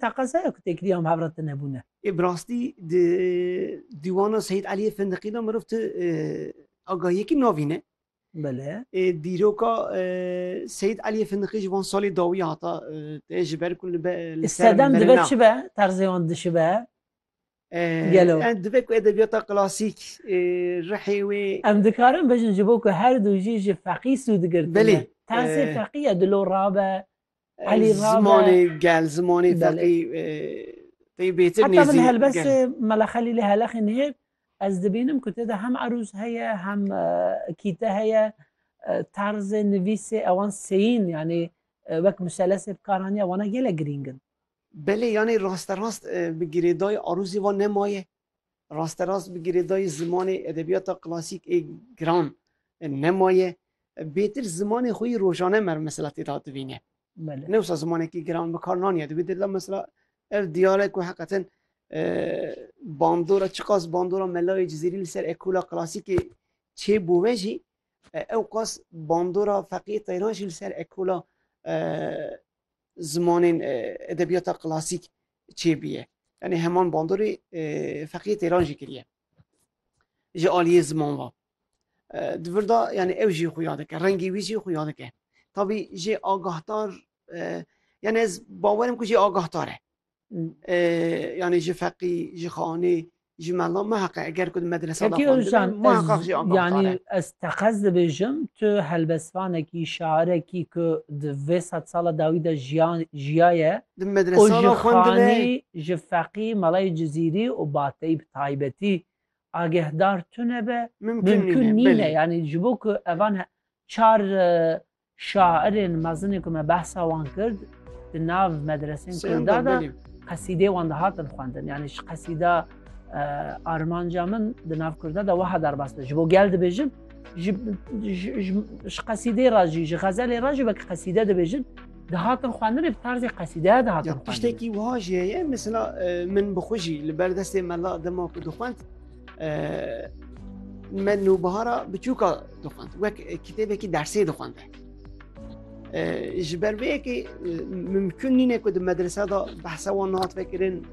Teqezaya ku têkilî am hevra te nebûne. Ê bi rastî di dîwana Seyîd Elîyê Findiqî de mirov ti agahiyekî navîne. Bele. Ê dîroka Seyîd Elîyê Findiqî ji van salê dawî hata te ji ber ku li be li ser Sedem dibe merinan. çi be? Terzê wan dişibe? Gelo. Em divê ku edebiyata klasîk rihê wê. Em dikarin bijin ji bo ku her du jî ji feqî sû digirtin. Belê. Tersê feqî ye dilo rabe. Elî rabe. Zimanê gel, zimanê feqî. Taybêtir nêzî. Heta min helbestê Mela Xelîlê Heleqî nihêr ez dibînim ku tê de hem erûz heye hem kîte heye terzê nivîsê ewan seyîn yanî wek miselesê bikaranîya wana gelek girîng in. Belê yanî rasterast bi girêdayî arozê wan nemaye? Rasterast bi girêdayî zimanê edebiyata klasîk ê giran nemaye? Bêtir zimanê xwe yî rojane mer mesela tê de hatibîne. Ne wisa zimanekî giran bi kar naniye. Di wê dil de mesela ev diyare ku heqeten bandora çiqas bandora melayê cizîrî li ser ekola klasîkê çê bû ve jî ewqas bandora feqîyê teyran jî li ser ekola zimanên edebiyata klasîk çêbûye. Yanî heman bandorê feqîyê têran jî kiriye. Ji aliyê ziman ve. Di vir de yanî ew jî xwe ya dike, rengê wî jî xwe ya dike. Tabî jê agahdar yanî ez bawerim ku jê agahtar e. yani ji feqî ji xanê ji mela me heqe eger ku medresa yani ez teqez dibêjim tu helbesvanekî şarekî ku di vê sed sala dawî de jiyan jiyaye di medresa xwendine ji feqî melayê cizîrî û bateyî bi taybetî agehdar tune be mümkün nîne yani ji bo ku evan çar Şairên mezinê ku me behsa wan kir di nav medresên kurdan de qesîdeyê wan dihatin xwendin. Yanî ji qesîda armanca min di nav kurdan de weha derbas be ji bo gel dibêjin ji qesîdeyê re jî ji xezelê re jî wekî qesîde dibêjin dihatin xwendinê bi tarzê qesîdeya dihatin tiştekî wiha jî heye mesela min bi xwe jî li ber destê mela dema ku dixwend me nûbihara biçûka dixwend wek kitêbekî dersê dixwende ji ber vê yekê mimkun nîne ku di medrese da behsa wan nihat vekirin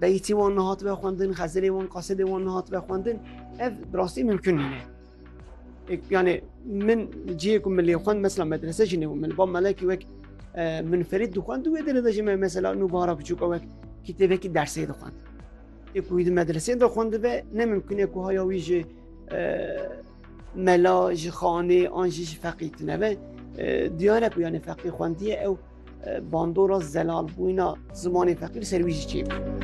beytî wan nihat ve xwendin xezirê wan qasidê wan nihat ve xwendin ev bi rastî mimkun nîne yani min cihê ku milê xwend mesela medrese jî nêbû min ba melekî wek minferîd dixwend wê derê de ji me mesela nûbihara biçûka wek kitêbekî dersê dixwend Ê ku wî di medreseyên de xwendibe ne mimkun e ku haya wî ji mela ji xanê an jî ji feqî tinebe. Diyar e ku yanê feqî xwendiye ew bandora zelalbûna zimanê feqî li ser wî jî çêbû.